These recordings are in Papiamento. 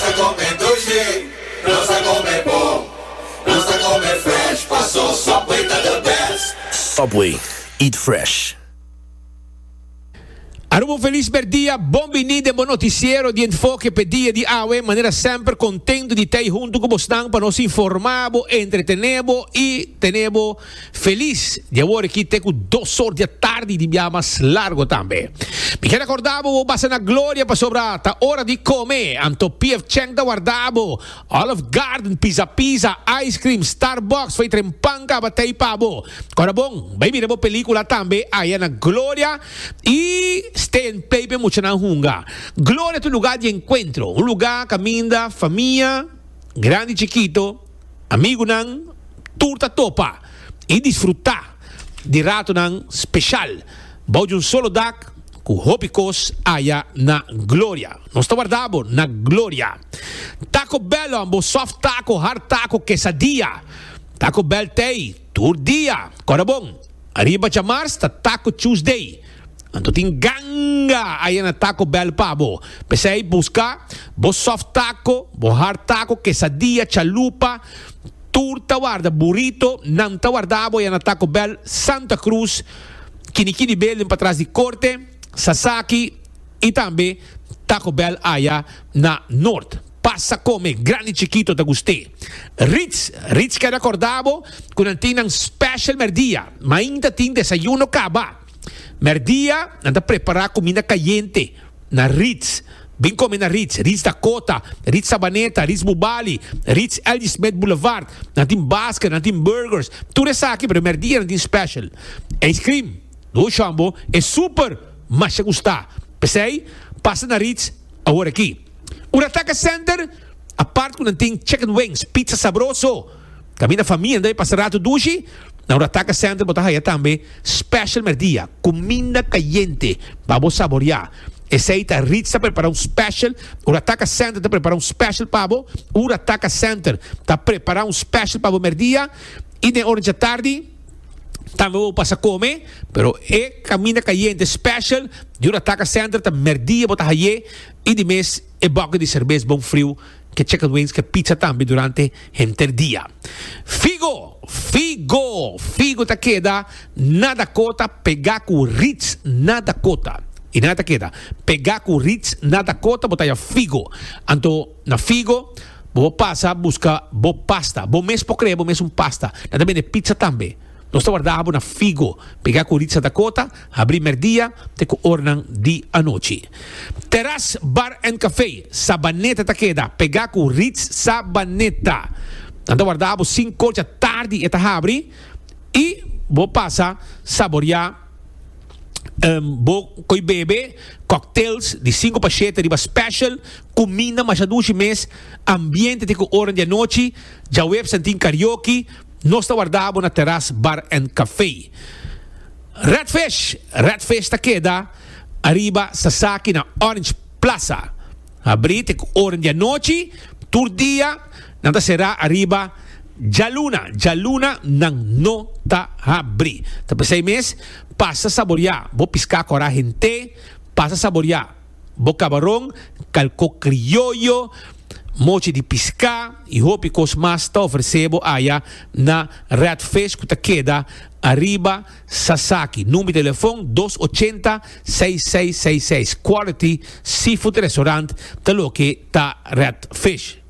ta come dulce, nos ta come bon, nos ta come fresh, paso Subway ta the best. Subway, eat fresh. Aruba un felis merdia, bon bini den bo noticiero di Enfoke p'e dia di awe. Manera semper contento di t'ey hunto cu bosnan pa nos informa bo, entretene bo y tene bo. Felis di awor aki te ku dos or di atardi di bia mas largo tambe. Mi ker akorda bo bo basa na gloria pasobra ta ora di kome, anto PF Chang ta warda bo, Olive Garden, Pizza Pizza, ice cream, Starbucks, fei tren pan kaba tei pa bo. Kora bon, bai mira bo pelikula tambe aya na gloria i stay and play p'e muchanan hunga. Gloria ta un luga di enkuentro, un luga kaminda famia grandi i chikito, Amigunan tur ta topa i disfrutá di ratonan speshal bou di un solo dak ku hopi kos aya na Gloria. Nos ta warda bo na Gloria. Taco Bell on bo soft taco, hard taco, quesadilla. Taco Bell t'ei tur dia. Kòrda bon, ariba djamars ta Taco Tuesday. Anto tin ganga aya na taco bell pa bo. Pesey busca bo soft taco, bo hard taco, quesadilla, chalupa, tur ta warda burrito, nan ta warda bo aya na taco bell Santa Cruz, kini kini building patras di corte, sasaki y tambe taco bell aya na Noord. Pasa come grandi chikito ta gust'e. Ritz, Ritz keda corda bo cu nan tin nan special merdia, mainta tin desayuno caba. Mèrdia nan ta prepará kuminda kayente na Ritz. Bin kome na Ritz, Ritz Dakota, Ritz Sabaneta, Ritz Bubali, Ritz L.G. Smith Boulevard. Nan tin basket, nan tin burgers, tur esaki, pero mèrdia nan tin special. Ijskrim, no shòmbo, e super masha gustá. P'esei, pasa na Ritz awor aki. Ora taka senter, apart ku nan tin chicken wings, pizza sabroso. Caminda famia debe pasa rato dushi, na un rataca center bo ta haya tambe special merdia, cuminda cayente pa bo saborea. Esey ta Ritz ta prepara un special, un rataca center ta prepara un special pa bo, un rataca center ta prepara un special pa bo merdia y den ora djatardi tambe bo pasa come, pero e caminda cayente special di un rataca center ta merdia bo ta haye y di mes e bucket di cervez bon friu Ke chicken wings ke pizza tambe durante henter dia. Figo! Figo! Figo ta keda na Dakota pegá ku Ritz na Dakota. I nan a ta keda pegá ku Ritz na Dakota, bo ta haya figo. Anto na figo bo por pasa buska bo pasta. Bo mes por krea bo mes un pasta. Nan ta bende pizza tambe. Nos ta warda bo na figo pegá ku Ritz na Dakota. Habri merdia te ku ornan di anochi. Teras Bar and Café Sabaneta ta keda pegá ku Ritz Sabaneta. Nan ta warda bo sin kocha tardi e ta habri i bo pasa saboriá bo koi bebe, cocktails di sinku pa shete riba special, kuminda masha dushi mes, ambiente te ku ornan di anochi, djaweps nan tin karaoke. Nos ta warda bo na Teras Bar and Café. Redfish, Redfish ta keda ariba Sasaki na Orange Plaza. Habrí te ku ora di anochi, tur dia nan ta será ariba djaluna, djaluna nan no ta habrí. Ta p'esei mes, pasa saboriá bo piská kò rahin te, pasa saboriá. bo kabaron, kalko krioyo, mochi di piská i hopi kos mas ta ofresé bo aya na Red Fish ku ta keda ariba Sasaki. Number di telefon dos ochenta seis seis seis seis. Quality Seafood Restaurant ta loke ta Red Fish.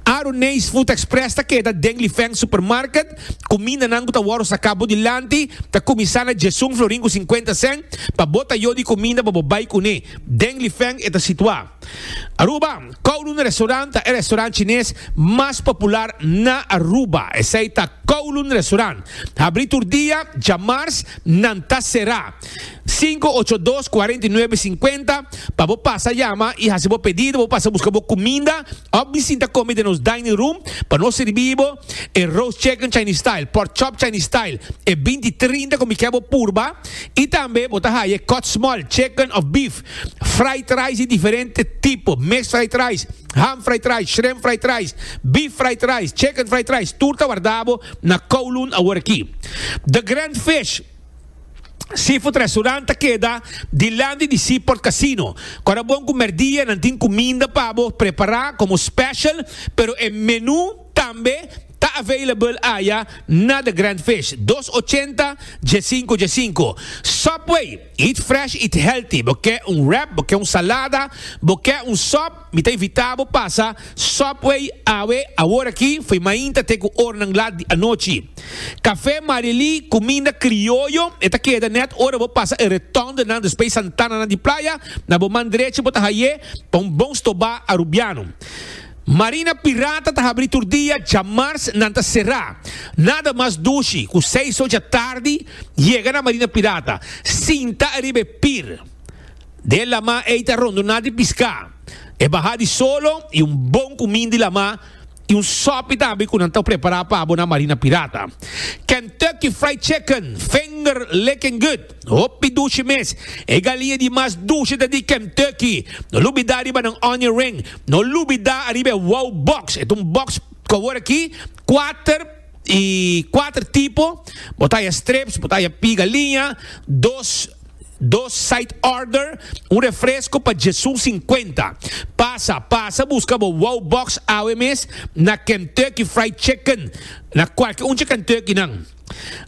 Aru Nees Food Express ta keda den Lifeng Supermarket. Kumindanan ku ta wòrdu saká bou dilanti ta kuminsá na djiesun florin ku sinkuenta sèn. Pa bo ta yu di kuminda pa bo bai kuné den Lifeng e ta situá. Aruba, Kowloon Restaurant ta e restaurant chines mas popular na Aruba. Esei ta Kowloon Restaurant. Habrí tur dia, dja mars nan ta será. Sinku ocho dos kuarenta i nuebe sinkuenta pa bo pasa yama i hasi bo pedido bo pasa buska bo kuminda òf di sinta kome den nos dining room pa nos sirbi bo e roast chicken chinese style pork chop chinese style e binti trinta ku mi kè bo purba i tambe bo ta haya e kòt small chicken òf beef fried rice di diferente tipo mes fried rice ham fried rice shrimp fried rice beef fried rice chicken fried rice tur ta warda bo na kowloon awor aki the grand fish Seafood Restaurant ta keda dilanti di Seaport Casino. Kora bon ku merdia nan tin kuminda pa bo prepará komo special, pero e menú tambe ta available aya na The Grand Fish, dos ochenta dje sinku dje sinku. Subway, eat fresh, eat healthy. Bo ke un wrap, bo ke un salada, bo ke un sòp, Mi ta invitá bo pasa Subway awe aworaki fo'i mainta te ku ornan lat di anochi. Kafé Marily, kuminda krioyo, e ta keda nèt ora bo pasa e retondenan despey santananan di playa, na bo man drechi bo ta haye pa un bon stobá arubiano. Marina Pirata ta habri tur dia, djamars nan ta será. Nada mas dushi ku seis ocha tardi yega na Marina Pirata, sinta ariba e pir. den lamá ei ta rondoná di piská. E bahá di solo i un bon kumin di lamá i un sòpi tambe ku nan ta prepará pa bo na Marina Pirata. Kentucky Fried Chicken, finger licking good, hopi dushi mes. E galinha di mas dushi ta di Kentucky. No lubidá riba nan onion ring. No lubidá ariba e wow box. E ta un box ku awor aki kuater Y cuater tipo, bo ta haya strips, bo ta haya piga liña, dos, dos side order, un refresco pa djesun cincuenta. Pasa, pasa busca bo wow box awe mes na Kentucky Fried Chicken, na cualke un dje Kentuckynan.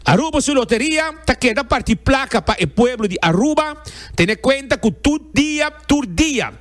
Aruba su loteria ta keda parti placa pa e pueblo di Aruba, tene cuenta cu tur dia, tur dia,